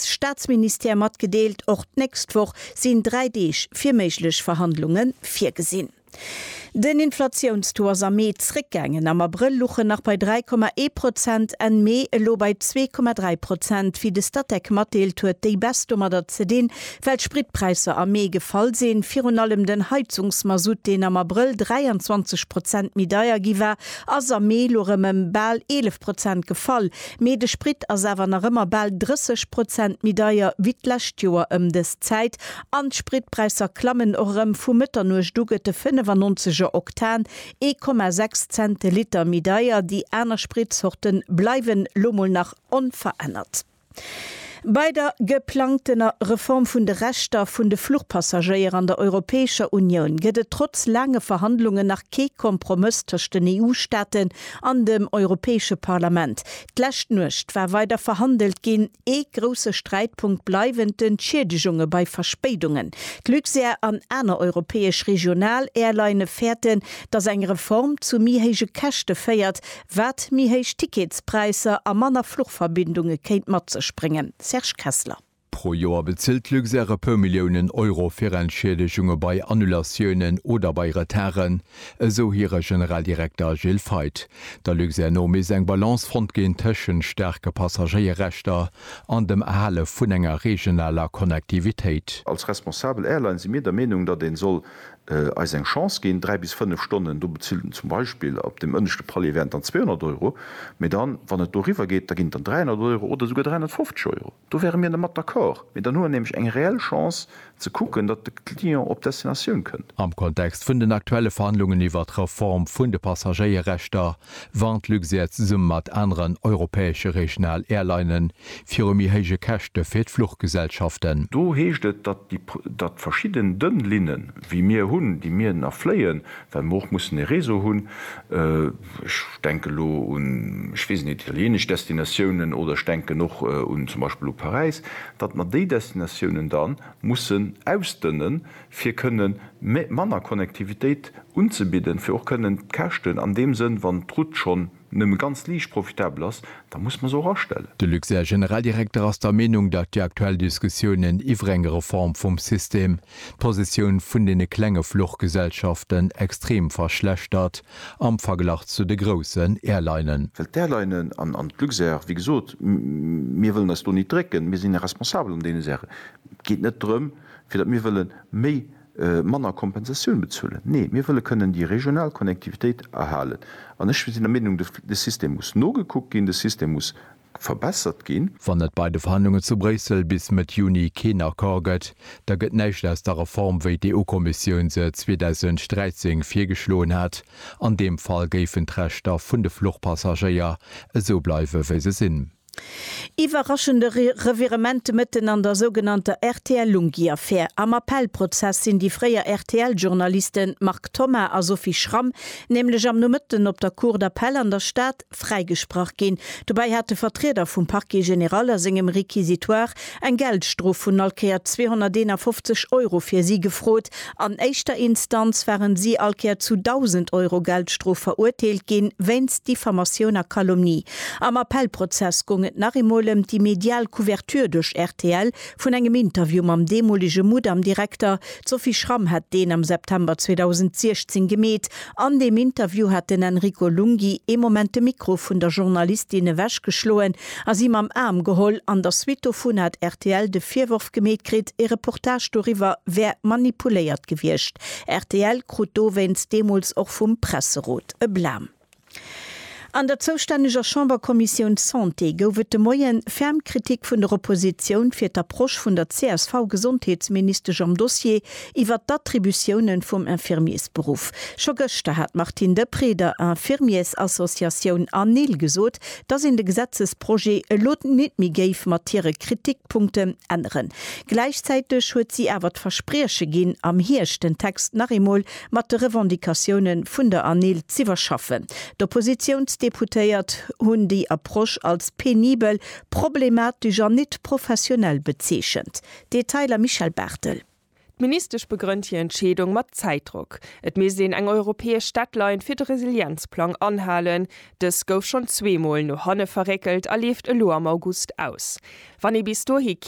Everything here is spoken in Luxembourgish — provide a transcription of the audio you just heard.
Staatsministère matgedeelt. Och d'nächst Woch sinn dräi Deeg fir méiglech Verhandlunge virgesinn. Den Inflatiounstaux ass am Mee zréckgaangen. Am Abrëll luch en nach bei 3,1 Prozent, Enn Mee elo bei 2,3 Prozent. Wéi de Statec matdeelt, huet déi Baisse domadder ze dinn, well d'Spritpräisser am Mee gefall sinn. Virun allem den Heizungsmasutt, deen am Abrëll 23 Prozent méi deier gi war, ass am Mee elo rëm ëm bal 11 Prozent gefall. Mee de Sprit ass awer nach ëmmer bal 30 Prozent méi deier wéi d'lescht Joer ëm dës Zäit an d'Spritpräisser klammen och erëm. Vu Mëtternuecht u gëtt de 95 er Oktan ee Komma sechs Cent de Liter méi deier. Déi aner Spritzorte bleiwen lo mol nach onverännert. Bei der geplangtener Reform vun de Rechter vun de Fluchpassagéier an der Europäescher Unioun gëtt et trotz laange Verhandlungen nach kee Kompromëss tëscht den EU-Staaten An dem Europäesche Parlament d'lescht Nuecht war weider verhandelt ginn. Ee grousse Sträitpunkt bleiwen d'Entschiedegunge bei Verspéidungen. D'Luxair an aner europäesch Regional-Airlinne fäerten, datt eng Reform zu méi héije Käschte féiert, wat méi héich Ticketspräisser a manner Fluchverbindunge kéint mat sech bréngen. Serge Kessler. Pro Joer bezilt d'Luxair e puer Milliounen Euro fir Entschiedegunge bei Annulatiounen oder bei Retarden, esou hire Generaldirekter Gilles Feith. Der Luxair no misst eng Balance fonnt ginn tëschent staarke Passagéierrechter an dem Erhale vun enger regionaler Connectivitéit. Als responsabel Airline si mir der Meenung, datt ee soll eis eng Chance ginn. Dräi bis fënnef Stonnen, do bezilt en zum Beispill op deem ënneschte Palier wären et dann 200 Euro, mee dann, wann et doriwwer geet, da ginn et dann 300 Euro oder esouguer 350 Euro. Do wäre mir dermat d'accord, mee dann hu mer nämlech eng reell Chance ze kucken, datt de Client op Destinatioun kënnt. Am Kontext vun den aktuelle Verhandlungen iwwert d'Reform vun de Passagéierechter warnt Luxair zesumme mat aneren europäesche regional Airlinene viru méi héije Käschte fir d'Fluchgesellschaften. Do heescht et, datt datt verschidden dënn Linnen, wéi mir hunn, déi mir nach fléien, well mer och mussen e Réseau hunn, ech denken elo un, ech weess et net, italienesch Destinatiounen oder ech denken och un zum Beispill u Paräis, datt mer déi Destinatiounen da mussen ausdënnen, fir kënne manner Connectivitéit unzebidden, fir och kënnen d'Käschten an deem Sënn, wann d'Route schonn. nëmme ganz liicht profitabel ass, da muss mer se och astellen. De Luxair Generaldirekter ass der Meenung, datt déi aktuell Diskussiounen iwwer eng Reform vum System d'Positioun vun deene klenge Fluchgesellschaften extrem verschlechtert am Verglach zu de groussen Airlinen. Well d'Airlinen an d'Luxair, wéi gesot, mir wëllen eis do nit drécken, mir sinn responsabel an deene Saachen. Et geet net drëm, fir datt mir wëlle méi manner Kompensatioun bezuelen. Nee, mir wëlle kënnen déi regional Connectivitéit erhalen. An ech sinn der Meenung, de System muss nogekuckt ginn, de System muss verbessert ginn. Wann et bei de Verhandlungen zu Bréissel bis Mëtt Juni keen Accord gëtt, da gëtt näischt aus der Reform, wéi d'EU-Kommissioun se 2013 virgeschloen hat. An deem Fall géifen d'Rechter vun de Fluchpassagéier esou bleiwe wéi se sinn. Iwwerraschende Revirement de Mëtten an der sougenannter RTL-Lunghi-Affär. Am Appellprozess sinn déi fréier RTL-Journaliste Marc Thoma a Sophie Schramm nämlech am Nomëtten op der Cour d'appel an der Stad fräigesprach ginn. Dobäi hate Vertrieder vum Parquet général a sengem Réquisitoire Eng Geldstrof vun all Kéier 251 Euro fir si gefrot. An éischter Instanz waren si all Kéier zu 1.000 Euro Geldstrof verurteelt ginn, wéinst Diffamatioun a Calomnie. Am Appellprozess goung et nach eemol ëm déi medial Couverture duerch rtl vun engem Interview mam deemolege Mudam-Direkter. D'Sophie Schramm hat deen am September 2016 gemeet. An deem Interview hat den Enrico Lunghi ee Moment de Mikro vun der Journalistin ewech geschloen a si mam Aarm geholl. An der Suite dovun hat rtl de Virworf gemeet kritt, ee Reportage doriwwer wär manipuléiert gewiescht. Rtl krut dowéinst deemools och vum Presserot e Blam. An der zoustänneger Chamberkommissioun Santé gouf et de Moien ferm Kritik vun der Oppositioun fir d'Approche vun der CSV-Gesondheetsministesch am Dossier iwwert d'Attributiounen vum Infirmiersberuff. Scho gëschter hat d'Martine Deprez der Infirmiersassociatioun ANIL gesot, dass een de Gesetzesprojet elo nit méi géif mat hire Kritikpunkten änneren. Gläichzäiteg huet si awer d'Versprieche ginn, am Hierscht den Text nach eemol mat de Revendicatioune vun der ANIL z'iwwerschaffen. D'Oppositiounsdeputéiert hunn déi Approche als penibel, problematesch an nit professionell bezeechent. Detailer Michèle Barthel. D'Ministesch begrënnt hir Entscheedung mat Zäitdrock. Et misst een eng europäesch Deadline fir de Resilienzplang anhalen. Dës gouf schonn zweemol no hanne verréckelt a leeft elo am August aus. Wann ee bis dohi kee.